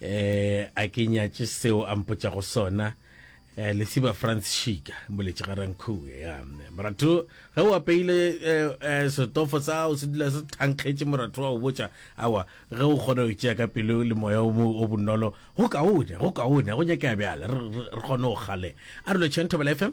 eh a ke nyatše seo a mpotša go sona eh lesiba france shika boletše ga rankhuwe ya moratho ge o apeile eh, eh, setofo sa o se dula se thankgetše moratho wa o botša awa ge o kgona go tšea ka pelo le moya o bonolo go kaone go kaone go nyakea bjale re kgone go gale a re lo tšhentho bela fm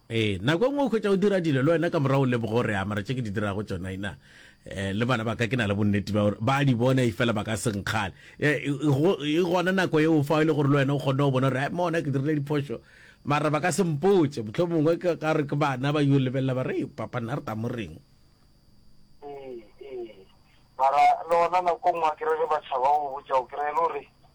Ee, nako e nngwe o hwetša o dira dilo le wena ka morago o leboga gore a mara tše ke di dirago tšona ina um le bana ba ka ke na le bonnete ba gore ba di bona efela ba ka se nkgale. E, e, e, e gona nako eo fa e le gore le wena o kgonne go bona gore a mona ke dirile diphošo mara ba ka se mpotše motlho mongwe ka gore ke bana ba yo lebelela ba re papa nna re tla mo reng mara le gona nako nngwe ke re ge ba tšhaba go botša o kry-e le gore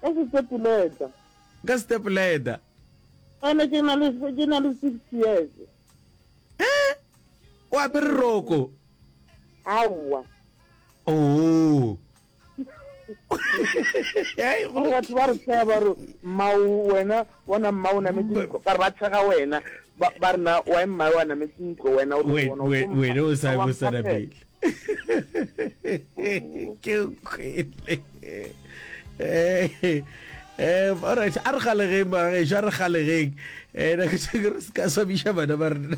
Ka setepuleta. Ka setepuleta. Ene ke na le ke na le 6 years. Eh? O apere roko? Aowa. Oh. batho ba re tshega ba re mmao wena bona mma o nametse ntlo ba re ba tshega wena ba rena wa mma wa nametse ntlo wena wena o sa o sa rapele ke kwele eh, eh, alright a re galegeng magageso a re galegeng um nako seke re seka swabiša bana ba rena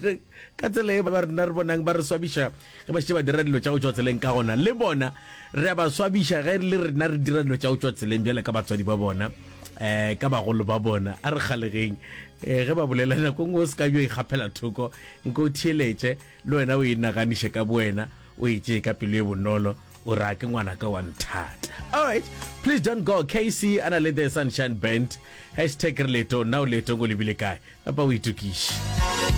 ka tsela e ba rena re bonang ba re swabiša ge ba šetse ba dira dilo tša go tswa tseleng ka gona le bona re a ba swabiša ge le rena re dira dilo tša go tswa tseleng bjale ka batswadi ba bona um ka bagolo ba bona a re galegeng um ge ba bolela nako ngwe o se ka bjo ikgapela thoko nko o theeletše Le wena o inaganiše ka bowena, o e tšee ka pelo e bonolo, o re a ke ngwanaka wa nthata. Alright, please don't go, KC a na le The Sunshine Band, hashtag re leetong, na o leetong o lebile kae? Napa o itokiše.